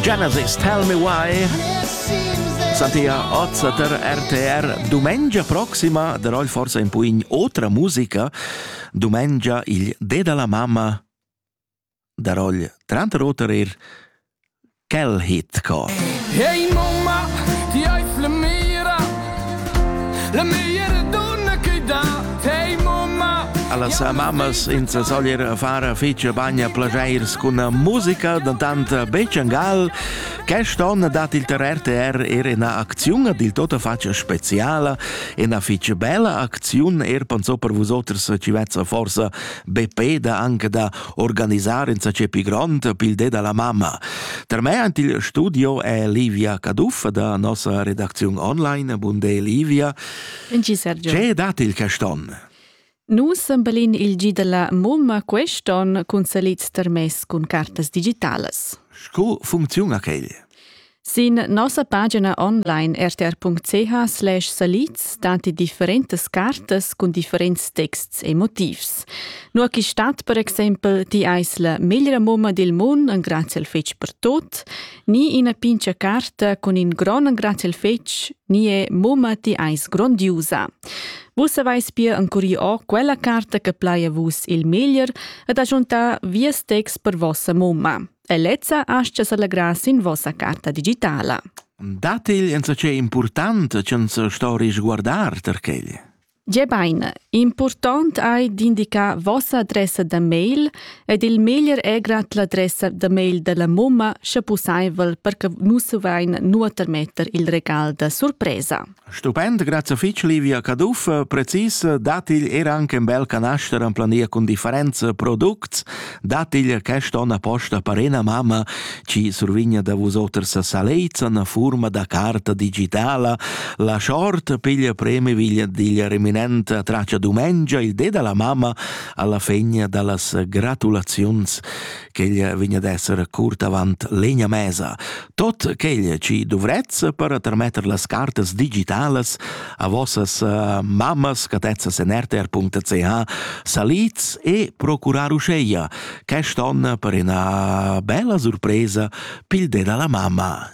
Genesis, Tell Me Why. Santia Ozzater RTR Dumengia proxima darò forse in puin otra musica. Dumengia il De dalla mamma darò trant roterer Kel Hit Cor. Hey Mama, ti hai flemira La meglier donna che dà te mamma Alla sa mammas in sa soglier fara fece bagna plagiairs con musica da tanta Becciangal Quest'onn dat il ter RTR er ina acziun dil tota faccia speciala, ina fece bella acziun er panso per vosoters ci vezza forsa BP da anche da organisar insatge pi grond pil de dalla mamma. Per me ant il studio è Livia Caduffa da nossa redacziun online. Bun de Livia. Ce dat il caston? Nus sembelin il gi della mumma quest'on cun salit termess cun cartas digitalas. Sco funcziun a quel? Sin nossa pagina online rtr.ch slash salids datti differentas cartas cun differents texts e motivs. Nur chi stat per exempel ti eis la meglra mumma dil mund, un grazie al fetg per tot, ni ina pincha carta cun in gron grazie al fetg, ni è mumma ti eis grondiusa. Vus avais pia ancuri o quella carta che plaia vus il meglier ed agiunta vies text per vossa mumma. e lezza astga s'allegrar sin vossa carta digitala. Dategl enza ce important ch'enza storis guardar tar quegl? Ge baine, important ei d'indicar vossa adressa da mail ed il meglier è grad l'adressa da mail della mumma sche pussaivel per che nus vain nuoter metter il regal da surpresa. Stupend, grazia fitg Livia Caduff. Precis dat igl er anche un bel canaster en plania cun differents products, dat igl quest onn apposta per ena mamma ci survigna da vusoters saleizan a furma da carta digitala. La short piglia premi viglia digl reminent a traccia dumengia il de della mamma alla fegna dallas gratulaziuns. ch'ella vegn ad esser curt avant l'egna mesa. Tot quel chi dovrez per termetter las cartas digitalas a vossas uh, mammas catezzas en rtr.ch saliz e procurar uscheia quest on per una bella surpresa pilde dalla mamma.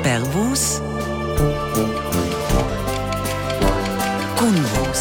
Per vos Con vos